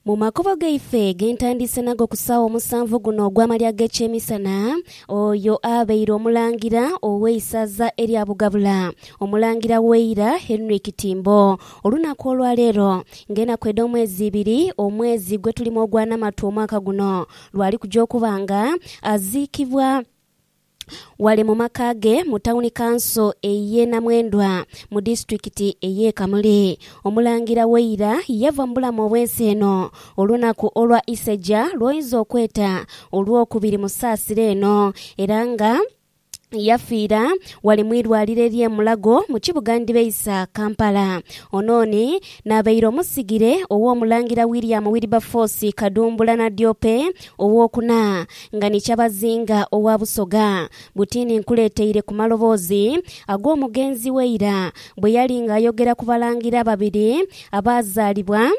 Mu makubo gaife ge ntandiise nago ku saawa omusanvu guno ogw'amalya g'ekyemisana, oyo abeire Omulangira ow'eisaza erya Bugabula, Omulangira w'eira Henry Kitimbo, olunaku olwa leero nga enaku edh'omwezi ibiri omwezi gwe tulimu ogwa Namatu omwaka guno, lwali kuja okuba nga aziikibwa. ghale mu maka ge mu Tawuni Kanso ey'e Namwendwa mu disitulikiti ey'e Kamuli. Omulangira Waira yava mu bulamu obw'ensi eno olunaku olwa Iseja lw'oyinza okweta Olwokubiri mu saasira eno era nga yafiira ghale mu irwaliro ery'e Mulago mu kibuga ndhibeisa Kampala. Ono ni n'abaire omusigire ow'Omulangira William Wilberforce Kadumbula Nadiope ow'okuna. Nga ni kyabazinga owa Busoga, butini nkuleeteire ku maloboozi ag'omugenzi we eira bwe yali nga ayogera ku balangira ababiri abaazaalibwa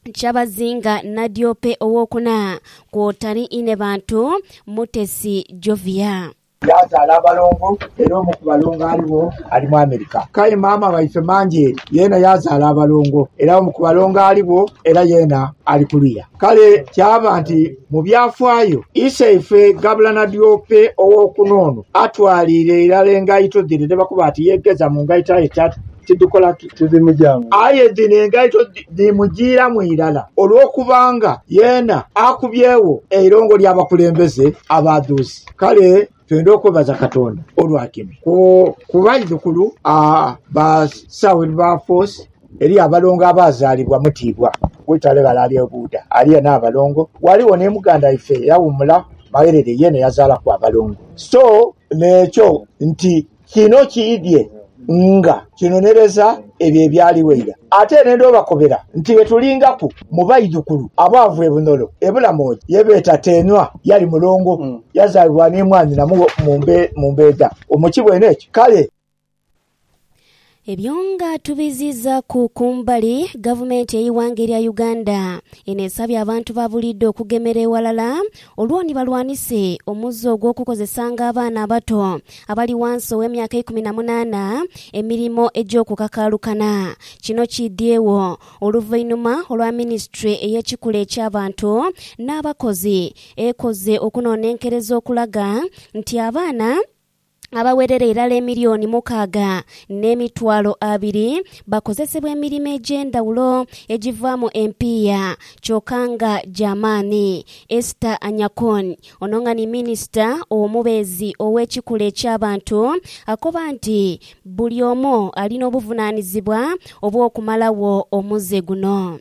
Kyabazinga Nadiope ow'okuna, kwota ni Inebantu Mutesi Jovia. Yaazaala abalongo era omu ku balongo aligho ali mu Amerika. K'aye maama waife Manjeeri yeena yaazaala abalongo era omu ku balongo aligho era yeena ali kuluya. Kale kyaba nti mu byafaayo, iseife Gabulana Diope ow'okuno ono atwaliire irala engaito dhino dhe bakoba ati yeegeza mu ngaito aye tidhikola ki? Tidhimujaamu. Aye dhino engaito dhimujiiramu irala olw'okubanga yeena akubyegho eirongo ly'abakulembeze abaadhuuzi. Kale twendha okwebaza Katonda olwa kino ku baidhukulu ba Sir Wilberforce, eriyo abalongo abaazaalibwa Mutibwa w'eitale ghale ali e Buudha, aliyo n'abalongo. Ghaligho ni muganda waife eyawuumula Magherere, yeena yazaalaku abalongo. So n'ekyo nti Kino kiidhie nga kinonereza ebyo ebyaligho eira. Ate n'endhu obakobera nti betulingaku mu baidhukulu abaava e Bunolo e Bulamoji ye beeta Teenwa. Yali mulongo, yazaalibwa ni mwanyina mu Mbeedha. Omukibwa eno ekyo kale. Ebyo nga tubiziizaaku ku mbali, gavumenti ey'eighanga erya Uganda eno esabye abantu ba buliidho okugemera eghalala olwo ni balwanise omuze ogw'okukozesanga abaana abato abali ghansi ow'emyaka eikumi na munaana emirimo egy'okukakaalukana. Kino kiidhyegho oluvainhuma olwa minisitule ey'ekikula eky'abantu n'abakozi ekoze okunoonenkereza okulaga nti abaana. abawerera irala emilioni mukaaga n'emitwalo abiri bakozesebwa emirimo egy'endhawulo egivaamu empiiya kyoka nga gya maani. Esther Anyakun, ono nga ni minisita omubeezi ow'ekikula eky'abantu akoba nti buli omu ali n'obuvunaanizibwa obw'okumalawo omuze guno.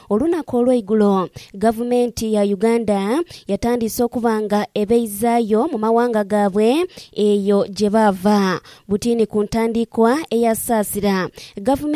Olunaku olweigulo gavumenti ya Uganda yatandise okuba nga ebeizaayo mu mawanga gaabwe eyo gye baava. Butini ku ntandikwa eya Saasira, gavumenti.